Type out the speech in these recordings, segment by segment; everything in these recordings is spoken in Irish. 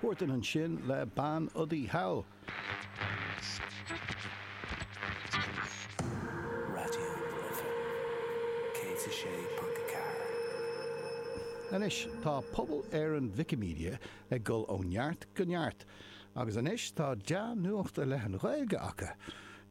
Huartan ansin le Bean Udaí Thall. Raidió na Life 106.4. Anois tá Pobal Éireann Wikimedia ag dul ó neart go neart agus anois tá dea-nuacht i leith an Ghaeilge acu.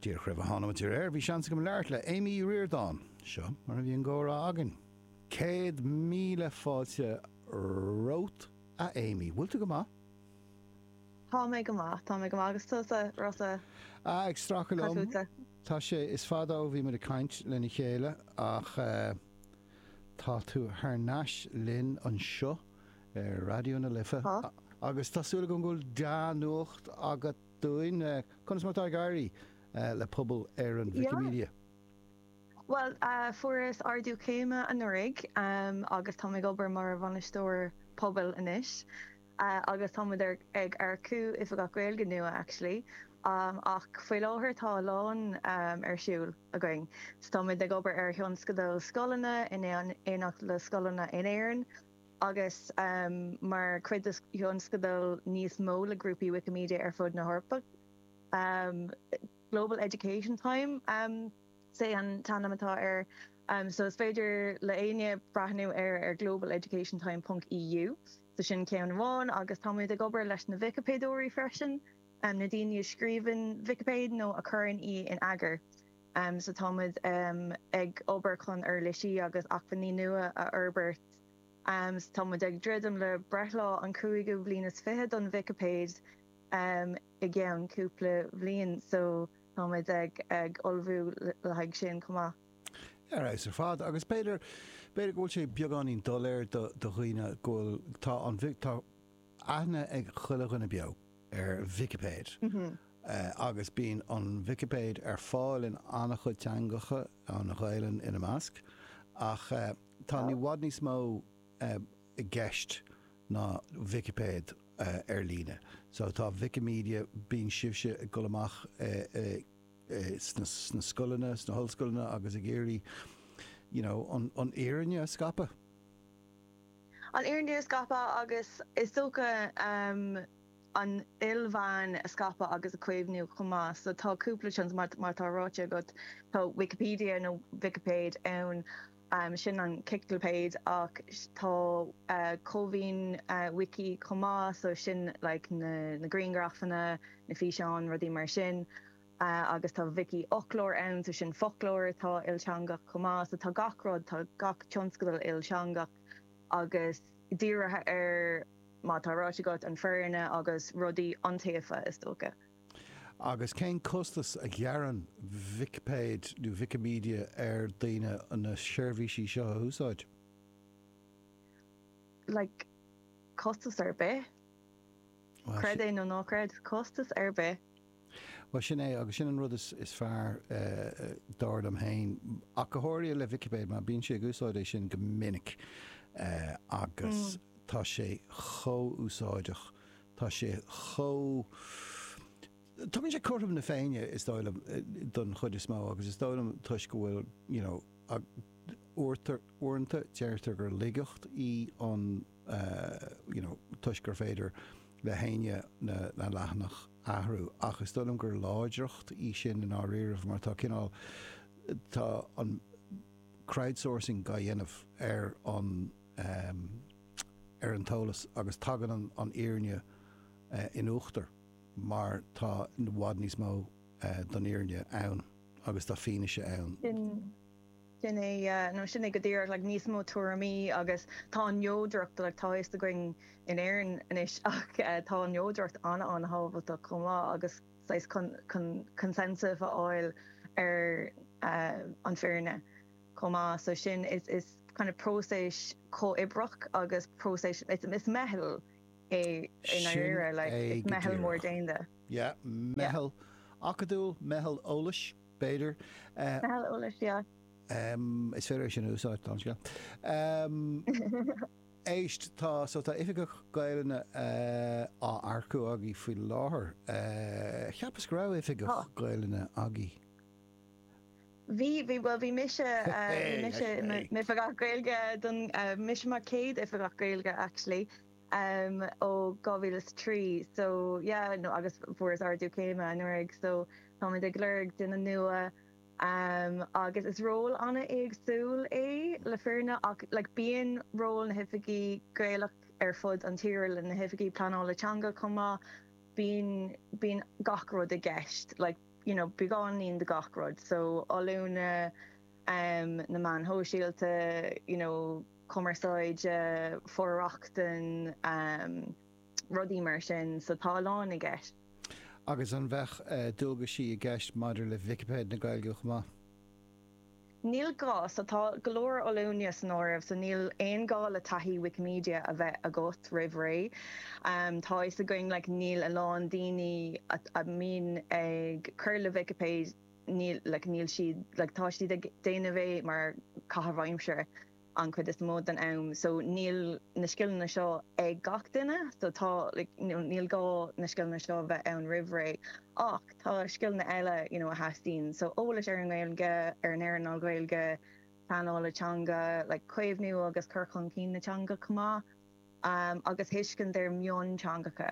Díreach roimh a thánamar ar an aer bhí seans agam labhairt le Amy O'Riordan. Seo mar a bhí an gcomhrá againn. Céad míle fáilte romhat, a Amy. Bhfuil tú go maith? Tá mé go maith, tá mé go maith. Agus tusa, Rossa? Ah, ag stracadh liom. Tá sé, is fada ó bhí muid ag caint lena chéile ach eh tá tú thar n-ais linn anseo ar Raidió na Life Tá. agus tá súil agam go bhfuil dea-nuacht agat dúinn. Eh, conas mar atá ag éirí eh le Pobal Éireann Yeah. Wikimedia? Bhuel, fuaireas ardú céime anuraidh agus táim ag obair mar bhainisteoir pobail anois agus tá muid ag earcú Oifigeach Gaeilge nua, actually, ach faoi láthair tá a lán ar siúl againn. So tá muid ag obair ar thionscadal scoileanna in éineacht le scoileanna in Éirinn agus mar chuid de thionscadal níos mó le grúpaí Wikimedia ar fud na hEorpa. Global Education Time is ea an t-ainm atá air so is féidir le éinne breathnú air ar globaleducationtime ponc EU. So sin ceann amháin agus tá muid ag obair leis na Vicipéadóirí freisin, na daoine a scríobhann Vicipéid nó a chuireann í in eagar. So tá muid ag obair chun uirlisí agus acmhainní nua a fhorbairt. So tá muid ag druidim le breithlá an cúigiú bliain is fiche don Vicipéid. i gceann cúpla bliain so táimid ag ullmhú le haghaidh sin chomh maith. Ar fheabhas ar fad. Agus b'fhéidir, b'fhéidir go bhfuil sé beagáinín doiléir do dhaoine go bhfuil, tá an, tá aithne ag chuile dhuine beo ar Vicipéid agus bíonn an Vicipéid ar fáil in an-chuid teangacha, an Ghaelainn ina measc, ach tá i bhfad níos mó. i gceist ná Vicipéid ar líne. So tá Wikimedia, bíonn sibhse ag dul amach sna scoileanna, sna hollscoileanna agus ag iarraidh you know an fhírinne a scaipeadh. An fhírinne a scaipeadh agus is dócha an ilmheáin a scaipeadh agus a chaomhnú chomh maith. So tá cúpla seans, mar atá ráite agat, tá Wikipedia nó Vicipéid ann, Sin an chiclipéid ach tá cómhaoin wiki chomh maith, so sin like na griangrafanna, na físeáin, rudaí mar sin. Agus tá Vicífhoclóir ann, so sin foclóir atá ilteangach chomh maith. So tá gach rud, tá gach tionscadal ilteangach agus dírithe ar, mar atá ráite agat, an fhírinne agus rudaí iontaofa, is dócha. Agus cén costas a ghearrann Vicipéid nó Wikimedia ar dhaoine na seirbhísí seo a úsáid? Like, costas ar bith. Creid é nó ná creid, costas ar bith. Bhuel, sin é, agus sin an rud is fearr, dar liom féin. Ach go háirithe le Vicipéid, mar bímse ag úsáid é sin go minic agus tá sé chomh úsáideach Tá sé chomh. tugann sé cothrom na Féinne, is dóigh liom, don chuid is mó agus is dóigh liom toisc go bhfuil, you know, uairtar, uaireanta, deirtear gur laigeacht í an, you know, toisc gur féidir le héinne na, na leathanaigh a athrú ach is dóigh liom gur láidreacht í sin i ndáiríribh mar tá cineál, tá an crowdsourcing á dhéanamh ar an. ehm, ar an eolas agus tagann an fhírinne in uachtar mar tá i bhfad níos mó don fhírinne ann agus tá fianaise ann. Sin é, sin é go díreach, like níos mó tuairimí agus tá an neodracht, like tá a fhios againn in Éirinn anois ach tá an neodracht an-an-thábhachtach chomh maith agus saghas chun consensus a fháil ar an fhírinne. chomh maith, so sin is is kind of próiseas comhoibreach agus próiseas it's it's meitheal é i ndáiríre, like it's meitheal mór déanta. Yeah, meitheal acadúil, meitheal eolais, b'fhéidir. Eh, em, is féidir é sin a úsáid, tá an scéal. Em, éist, tá, so tá oifigeach Gaelainne eh, á earcú agaí faoi láthair. Eh, cheapas go raibh oifigeach Gaelainne agaí. Bhí, bhí, bhuel bhí mise, bhí mise i mo oifigeach Gaeilge don, mise mar chéad oifigeach Gaeilge actually ó 2003 so yeah nó agus fuaireas ardú céime anuraidh so táimid ag lorg duine nua agus is ról an-éagsúil é le fírinne ach like bíonn ról na hoifigigh Gaelach ar fud an tíre le na hoifigigh pleanála teanga chomh maith, bíonn, bíonn gach rud i gceist like. you know beagáinín de gach rud so oiliúna em na meáin shóisialta you know cumarsáid, for-rochtain em rudaí mar sin so tá a lán i gceist. Agus an mbeidh eh dualgaisí i gceist maidir le Vicipéid na Gaeilge chomh maith? Níl gá, so tá go leor oiliúna san áireamh, so níl aon gá le taithí Wikimedia a bheith agat roimh ré. Tá fhios againn like níl a lán daoine a mbíonn ag cur le Vicipéid, níl like níl siad like tá siad ag déanamh é mar chaitheamh aimsire. an chuid is mó den am so níl na scileanna seo ag gach duine so tá like you know níl gá na scileanna seo a bheith ann roimh ré ach tá scileanna eile you know a theastaíonn so eolas ar an nGaeilge, ar an earnáil Ghaeilge, pleanála teanga, like caomhnú agus cur chun cinn na teanga chomh maith umm agus tuiscint ar mhionteangacha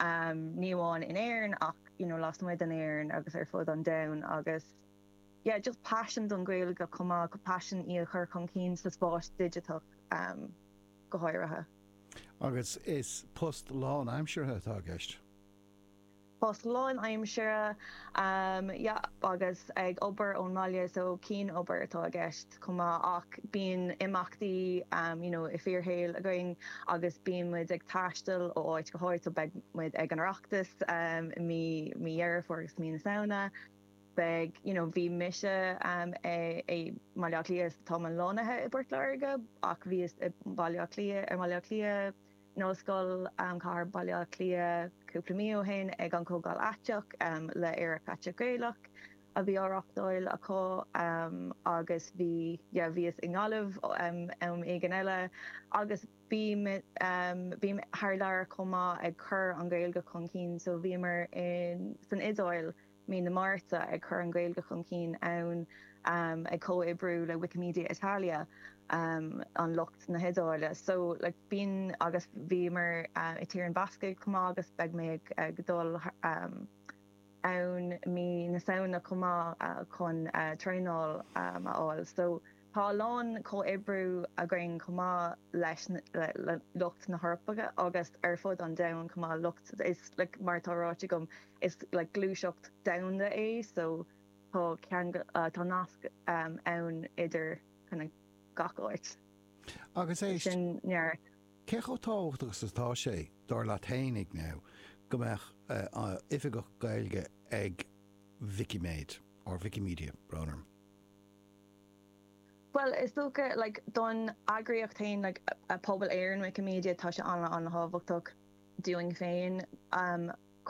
umm ní amháin in Éirinn ach you know lasmuigh d'Éirinn agus ar fud an domhain agus. yeah just paisean don Ghaeilge chomh maith agus paisean í a chur chun cinn sa spás digiteach go háirithe. Agus is post lánaimseartha atá i gceist? Post lánaimseartha yeah agus ag obair ón mbaile so cianobair atá i gceist chomh maith ach bíonn imeachtaí you know i fíorshaol againn agus bíonn muid ag taisteal ó áit go háit so beidh muid ag an Oireachtas i mí Dheireadh Fómhair agus mí na Samhna beidh, you know, bhí mise i mBaile Átha Cliath so tá mé lonnaithe i bPort Láirge ach bhíos i mBaile Átha Cliath, ar mBaile Átha Cliath, in Ollscoil Chathair Bhaile Átha Cliath cúpla mí ó shin ag an Chomhdháil Aiteach le Aerach Aiteach Gaelach a bhí á reáchtáil acu agus bhí, yeah, bhíos i nGaillimh am éigin eile agus bím, bím thar lear chomh maith ag cur an Ghaeilge chun cinn so bhíomar in, san Iodáil. mí na Márta, ag cur an Ghaeilge chun cinn ann, ag comhoibriú le Wikimedia Italia, an lucht na hIodáile. So, like, bíonn, agus bhíomar i Tír na mBascach chomh maith agus beidh mé ag dul ann mí na Samhna chomh maith chun traenáil a fháil. So. Tá a lán comhoibriú againn chomh maith leis le lucht na hEorpa agus ar fud an domhain chomh maith, lucht is like mar atá ráite agam is like gluaiseacht domhanda é so tá ceangal tá nasc ann idir kind of gach áit. Agus éist, Sin neart. cé chomh tábhachtach is atá sé, dar leat fhéinig now, go mbeadh oifigeach Gaeilge ag Vicíméid or Wikimedia, brón orm? Bhuel, is dócha, like, don eagraíocht féin, like, pobal Éireann Wikimedia, tá sé an-an-thábhachtach dúinn féin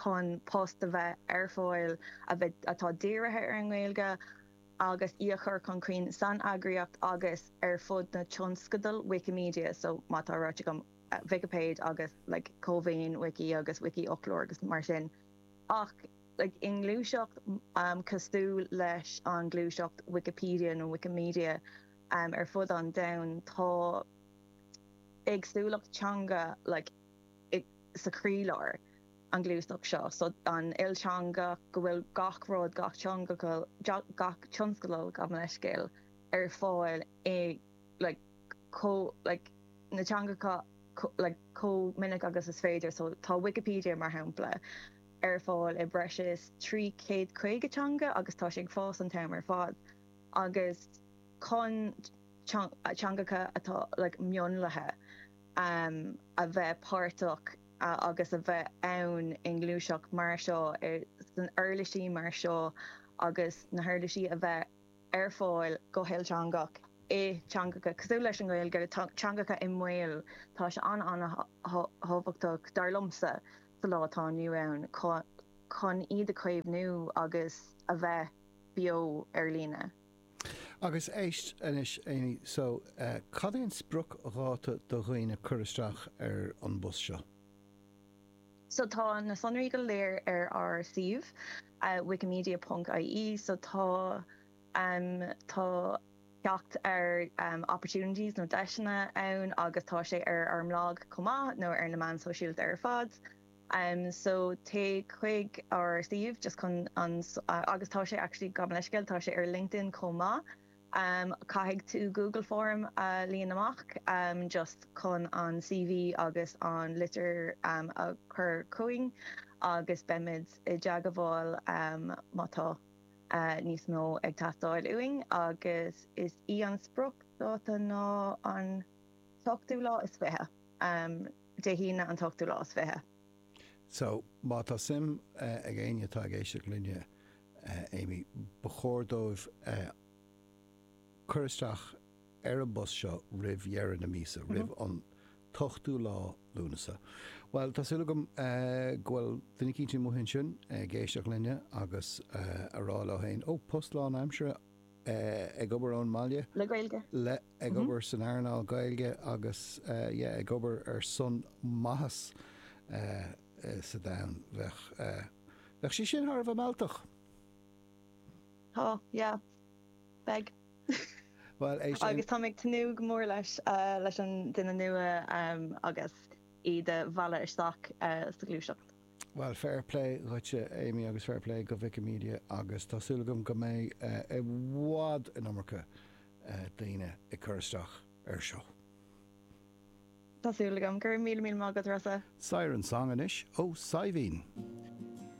chun post a bheith ar fáil a bheith, atá dírithe ar an nGaeilge agus í a chur chun cinn san eagraíocht agus ar fud na tionscadal Wikimedia, so, mar atá ráite agam, Vicipéid agus, like, Cómhaoin Wiki agus Wikifhoclóir agus mar sin ach. i ngluaiseacht cosúil leis an gluaiseacht Wikipedia nó Wikimedia ar fud an domhain, tá éagsúlacht teanga sa chroílár an ghluaiseacht seo, so an ilteangach, go bhfuil gach rud, gach tionscadal, gach tionscadal, gabh mo leithscéal, ar fáil i na teangacha chomh minic agus is féidir. So tá Wikipedia, mar shampla. ar fáil i breis is trí chéad caoga teanga agus tá sé ag fás an t-am ar fad agus chun teangacha atá like mionlaithe a bheith páirteach agus a bheith ann i ngluaiseacht mar seo sna huirlisí mar seo agus na huirlisí a bheith ar fáil go hilteangach i dteangacha cosúil leis an nGaeilge teangacha i mbaol tá sé an-an-thábhachtach dar liomsa. sa lá atá inniu ann chun iad a chaomhnú agus a bheith beo ar líne. Agus éist anois Amy, so cad é an spriocdháta do dhaoine cur isteach ar an bpost seo? So tá na sonraí go léir ar ár suíomh, wikimedia punc, ie, so tá. Tá teacht ar opportunities nó deiseanna ann agus tá sé ar ár mblag chomh maith nó ar na meán sóisialta ar fad so téigh chuig ár suíomh just agus tá sé actually gabh mo leithscéal tá sé ar LinkedIn chomh maith caithfidh tú Google Form a líon amach just chun an CV agus an litir a chur chugainn agus beimid i dteagmháil má tá níos mó ag teastáil uainn agus is í an spriocdháta ná an t-ochtú lá is fiche, Dé hAoine an t-ochtú lá is fiche. So, má tá suim ag éinne atá ag éisteacht linne, Amy, ba chóir dóibh cur isteach. ar an bpost seo roimh dheireadh na míosa, roimh an t-ochtú lá Lúnasa. Bhuel, tá súil agam go bhfuil duine eicínt amuigh ansin ag éisteacht linne agus a rá leo fhéin, oh, post lán aimsire, ag obair ón mbaile, le Gaeilge, le, ag obair san earnáil Gaeilge agus yeah, ag obair ar son maitheas sa domhan, bheadh, bheadh sé sin thar a bheith mealltach! Tá, yeah, beidh. Bhuel, éist. Agus táim ag tnúth go mór leis, leis an duine nua agus iad a mhealladh isteach sa ghluaiseacht. Bhuel, fair play dhuitse, Amy, agus fair play go Wikimedia agus tá súil agam go mbeidh i bhfad, an iomarca, daoine ag cur isteach air seo. Tá súil agam. Go raibh míle míle maith agat, Rossa. Siren Song anois ó Saidhbhín.